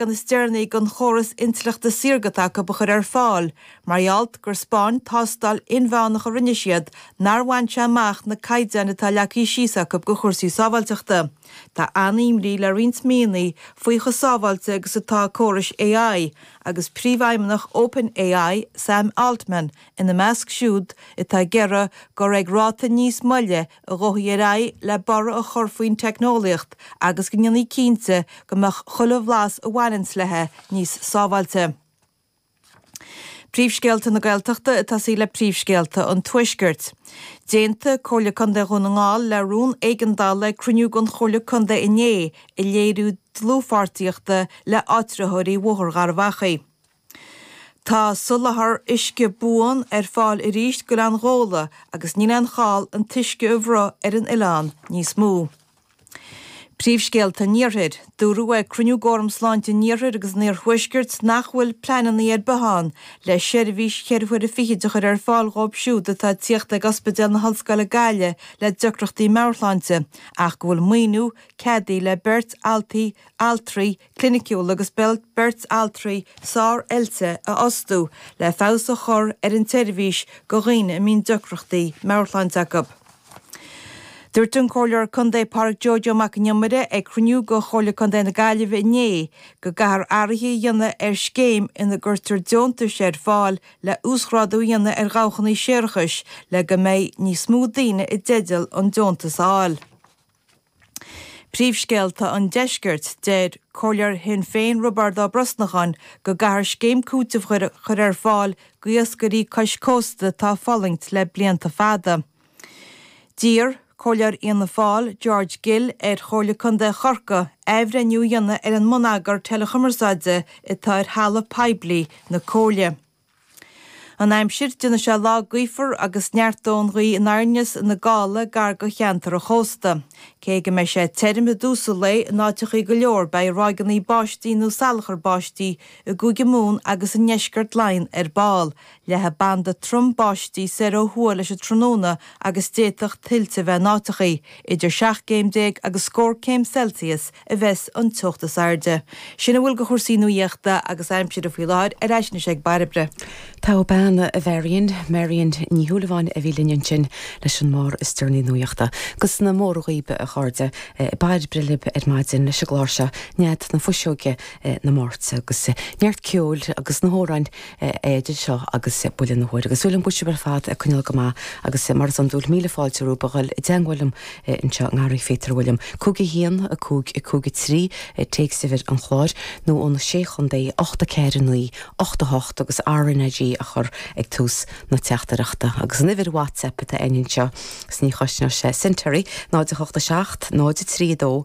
leagan is deireanaí den chóras intleachta saorga atá acu a chur ar fáil, mar gheall gur 'speáin, tástáil, inmheánach a rinne siad, nár bhain sé amach na caighdeáin atá leagtha síos acu do chúrsaí sábháilteachta. Tá an-imní le roinnt míonnaí faoi chomh sábháilte agus atá córais AI, agus príomhfheidhmeannach OpenAI, Sam Altman, ina measc siúd atá ag iarraidh gur ag ráta níos moille a ghabhfaí ar aghaidh le borradh a chur faoin teicneolaíocht agus go ndéanfaí cinnte go mbeadh chuile bhlas a bhaineanns léi níos sábháilte. Príomhscéalta na Gaeltachta ag tosú le príomhscéalta an Tuaiscirt. D'aontaigh Comhairle Contae Dhún na nGall le rún éigeandála ag cruinniú den Chomhairle Contae inné ag léiriú dlúthpháirtíochta le áitritheoirí Bhóthar Gharbhachaidh. Tá soláthar uisce buan ar fáil arís go Oileán Ghabhla agus níl aon chall an t-uisce a bhruith ar an oileán níos mó. Príomhscéalta an Iarthair. Dúradh ag cruinniú d'Fhóram Sláinte an Iarthair agus an Iarthuaiscirt nach bhfuil pleananna ar bith ann le seirbhís cheithre huaire fichid a chur ar fáil dhóibh siúd atá ag tíocht ag Ospidéal na hOllscoile Gaillimh le deacrachtaí meabhairshláinte ach go bhfuil maoiniú ceadaithe le beirt altraí cliniciúil agus beirt altraí sár-oilte a fhostú le feabhas a chur ar an tseirbhís do dhaoine a mbíonn deacrachtaí meabhairshláinte acu. Dúirt an Comhairleoir Contae Pádraig Joe Joe Mac an Iomaire ag cruinniú de Chomhairle Contae na Gaillimhe inné go gcaithfear athruithe a dhéanamh ar scéim ina gcuirtear deontais ar fáil le huasghrádú a dhéanamh ar dhabhachannaí séarachais le go mbeidh níos mó daoine i dteideal an deontas a fháil. Príomhscéalta an Deiscirt, Deir comhairleoir Shinn Féin Roibeárd Ó Brosnacháin go gcaithfear scéim cúitimh a chur ar fáil d'iascairí cois cósta atá ag fulaingt le blianta fada. D'iarr comhairleoir Fhianna Fáil, George Gill, ar Chomhairle Contae Chorca athbhreithniú a dhéanamh ar an mbonneagar teileachumarsáide atá ar thalamh poiblí na Comhairle. An aimsir, Déanfaidh sé lá gaofar agus neartóidh an ghaoth aniar aneas ina gála gar do cheantair an chósta. Cé go mbeidh sé tirim i dtús an lae in áiteachaí go leor beidh ráigeannaí báistí nó salachar báistí i gCúige Mumhan agus i ndeisceart Laighean ar ball leathfaidh banda trom báistí soir ó thuaidh leis an tráthnóna agus d'fhéadfadh tuilte bheith in áiteachaí. Idir seacht gcéim déag agus scór céim Celsius a bheas an teocht is airde. Sin a bhfuil de chúrsaí nuaíochta agus aimsire faoi láthair ar ais anois ag Bairbre. Togha bean a Mharion, Marion Ní Shúilleabháin a bhí linn ansin leis an mbabhta is deireanaí nuaíochta. 'Gus na mora dhaoibh, a chairde, Bairbre libh ar maidin leis an gclár seo, nead na fuiseoige, na Máirte, 'gus neart ceoil agus amhráin idir seo agus buille na huaire, agus súil agam go bhfuil sibh ar fad ag coinneáil go maith, agus mar is iondúil, míle fáilte romhaibh a dhul i dteagmháil liom anseo i nGarraí Phíotair Uilliam, 51 553 téacsuimhir an chláir, nó ó na Sé Chontae, 849 88, agus RnaG a chur ag tús na teachtaireachta, agus an uimhir WhatsApp atá againn anseo is ní chosnóidh sé cent oraibh, 0 8 7 0 3 2